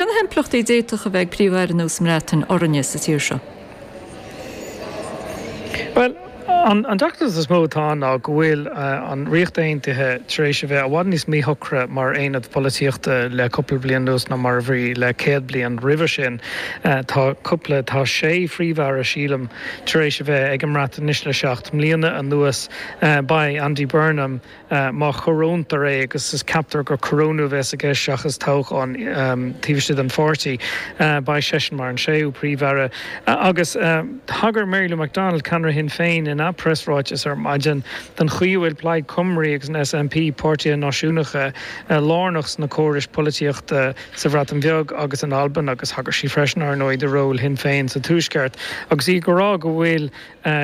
Cé na himpleachtaí a d'fhéadfadh a bheith ag Príomh-Aire nua sa mBreatain orainne sa tír seo? Bhuel, an deacracht is mó atá ann ná go bhfuil an Ríocht Aontaithe tar éis a bheith i bhfad níos míshocra mar aonad polaitíochta le cúpla bliain anuas ná mar a bhí le céad bliain roimhe sin. Tá cúpla, tá sé Phríomh-Aire, sílim, tar éis a bheith ag an mBreatain anois le seacht mbliana anuas. Beidh Andy Burnham Má corónaítear é, agus ceaptar gur corónú a bheas i gceist seachas toghchán taobh istigh den pháirtí, beidh seisean mar an séú Príomh-Aire. Agus thagair Mary Lou McDonald, ceannaire Shinn Féin, ina preasráiteas ar maidin don chaoi a bhfuil Plaid Cymru agus an SNP, páirtithe náisiúnacha, lárnach sna córais polaitíochta sa Bhreatain Bheag agus in Albain agus thagair sí freisin, ar ndóigh, do ról Shinn Féin sa Tuaisceart agus í ag rá go bhfuil.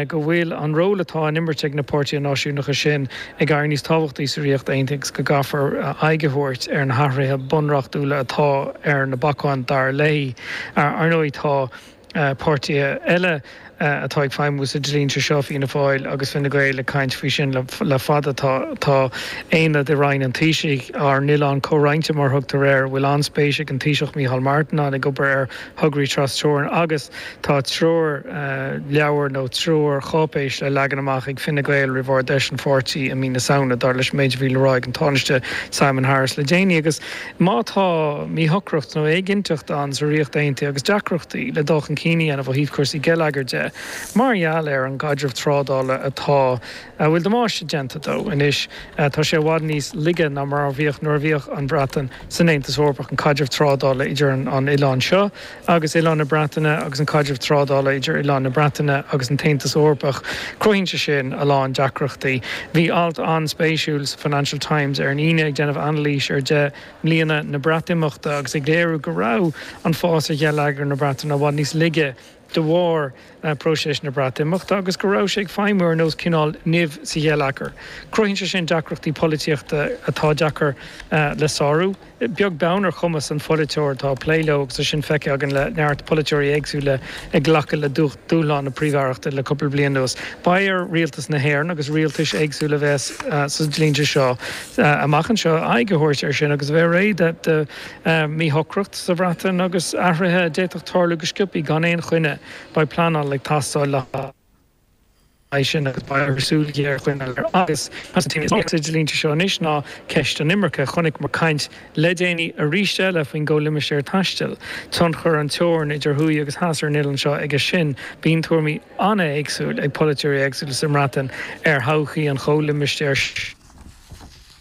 go bhfuil an ról atá á imirt ag na páirtithe náisiúnacha sin ag éirí níos tábhachtaí sa Ríocht Aontaithe agus go gcaithfear aghaidh a thabhairt ar na hathruithe bunreachtúla atá ar na bacáin, dar léi. Ar ndóigh, tá páirtithe eile atá ag feidhmiú sa dlínse seo, Fianna Fáil agus Fine Gael, ag caint faoi sin le fada. Tá, tá aonad i Roinn an Taoisigh, ár n-oileán comhroinnte mar thugtar air, a bhfuil an-spéis ag an Taoiseach Micheál Martin ann, ag obair ar thograí tras-teorann agus tá treoirleabhar nó treoircháipéis le leagan amach ag Fine Gael roimh Ard Fheis an pháirtí i mí na Samhna, dar leis an méid a bhí le rá ag an Tánaiste Simon Harris le déanaí. Agus má tá míshocracht nó éiginnteacht ann sa Ríocht Aontaithe agus deacrachtaí le dul chun cinn a dhéanamh ó thaobh cúrsaí geilleagair de mar gheall ar an gcaidreamh trádála atá a bhfuil damáiste déanta dó anois. Tá sé i bhfad níos laige ná mar a bhíodh nuair a bhíodh an Bhreatain san Aontas Eorpach. An caidreamh trádála idir an oileán seo agus oileán na Breataine agus an caidreamh trádála idir oileán na Breataine agus an tAontas Eorpach, cruthaíonn sé sin a lán deacrachtaí. Bhí alt an-spéisiúil sa Financial Times ar an Aoine ag déanamh anailís ar Deich mBliana na Breatimeachta agus ag léiriú go raibh an fás ar gheilleagar na Breataine i bhfad níos laige de bharr próiseas na Breatimeachta agus go raibh sé ag feidhmiú ar nós cineál nimh sa gheilleagar. Cruthaíonn sé sin deacrachtaí polaitíochta atá deacair le sárú, beag beann ar chumas an pholaiteoir atá ag plé leo agus tá sin feicthe againn le neart polaiteoirí éagsúla ag glacadh le dúshlán na príomh-aireachta le cúpla bliain anuas. Beidh ar rialtas na hÉireann agus rialtais éagsúla a bheas sa dlínse seo amach anseo aghaidh a thabhairt air sin agus a bheith réidh do Míshocracht sa mBreatain agus athruithe a d'fhéadfadh tarlú go sciobtha gan aon choinne, beidh pleanáil ag teastáil le haghaidh sin agus beidh orthu súil ghéar a choinneáil air agus sa dlínse seo anois ná ceist an imirce. Chonaiceamar caint le déanaí aríst eile faoin gcomhlimistéar taistil. Tionchar an teorann idir thuaidh agus theas ar an oileán seo aige sin. Bíonn tuairimí an-éagsúil ag polaiteoirí éagsúla sa mBreatain ar thodhchaí an chomhlimistéir.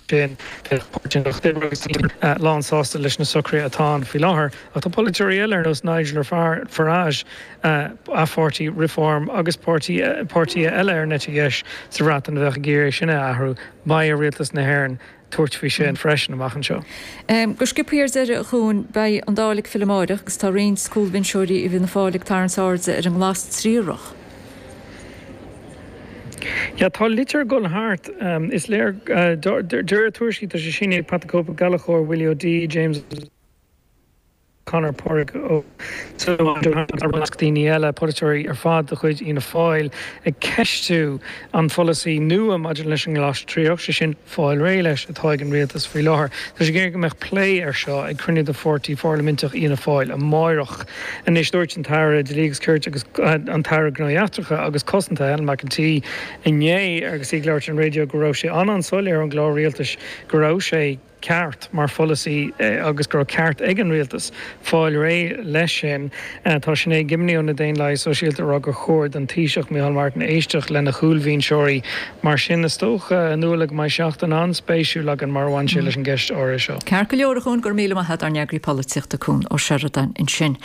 sin, bheadh Páirtí an Lucht Oibre agus Sinn Féin lán sásta leis na socruithe atá ann faoi láthair. Ach tá polaiteoirí eile ar nós Nigel Farage, a pháirtí Reform agus páirtithe eile ar an eite dheis sa Bhreatain a bheadh ag iarraidh é sin a athrú. Beidh ar Rialtas na hÉireann tabhairt faoi sin freisin amach anseo. Go sciobthaí ar deireadh, a Chuain, beidh an Dáil ag filleadh amáireach agus tá roinnt cúlbhinseoirí i bhFianna Fáil ag tarraingt airde ar an nglas triarach. Yeah tá litir ag dul thart, is léir, de réir tuairiscí tá sé sínithe ag Pat the Cope Ó Gallchóir, Willie O'Dea, James O'Connor, Pádraig Ó Súilleabháin, John Lahart agus i measc daoine eile, polaiteoirí ar fad de chuid Fhianna Fáil ag ceistiú An polasaí nua maidir leis an nglas triarach, sé sin, fáil réidh leis, atá ag an Rialtas faoi láthair, tá sé ag iarraidh go mbeadh plé air seo ag cruinniú de pháirtí pharlaiminteach Fhianna Fáil amáireach. Anois dúirt an tAire Dlí agus Cirt agus an tAire Gnóthaí Eachtracha agus Cosanta, Helen McEntee, inné agus í ag labhairt ar an raidió go raibh sé an-an-soiléir ón gclár rialtais go raibh sé ag ceart mar pholasaí agus go raibh ceart ag an Rialtas fáil réidh leis sin. Tá Sinéad Gibney ó na Daonlathaigh Sóisialta ag rá gur chóir don Taoiseach, Micheál Martin éisteacht lena chúlbhinseoirí mar sin. Is dócha, a Nuala, go mbeidh seachtain an-spéisiúil againn mar a bhain sé leis an gceist áirithe seo. Ceart go leor, a Chuain, go raibh míle maith agat ár n-eagraí polaitíochta Cuan Ó Seireadáin ansin.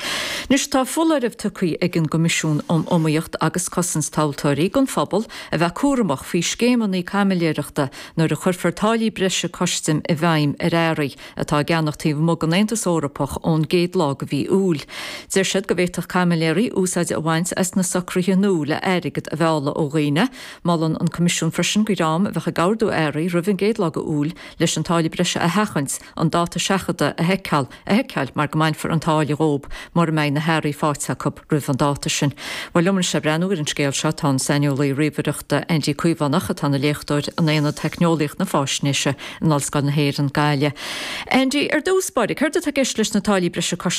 Anois tá foláireamh tugtha ag an gCoimisiún um Iomaíocht agus Cosaint Tomhaltóirí don phobal a bheith cúramach faoi scéimeanna caimiléireachta Nuair a chuirfear táillí breise custaim i bhfeidhm ar earraí atá á gceannach taobh amuigh den Aontas Eorpach ón gcéad lá de mhí Iúil, deir siad go bhféadfadh caimiléirí úsáid a bhaint as na socruithe nua le airgead a mhealladh ó dhaoine. Molann an Coimisiún freisin do dhream a bheadh ag ordú earraí roimh an gcéad lá de Iúil leis an táille breise a sheachaint, an dáta seachadta a sheiceáil, a sheiceáil mar go mbainfear an táille dhóib mura mbeidh na hearraí faighte acu roimh an dáta sin. Bhuel, liom anois le breathnú ar an scéal seo. Tá an saineolaí ríomhaireachta Aindí Caomhánach, atá ina léachtóir in Aonad Theicneolaíocht na Faisnéise in Ollscoil na hÉireann, Gaillimh. Aindí, ar dtús báire, céard atá i gceist leis na táillí breise cois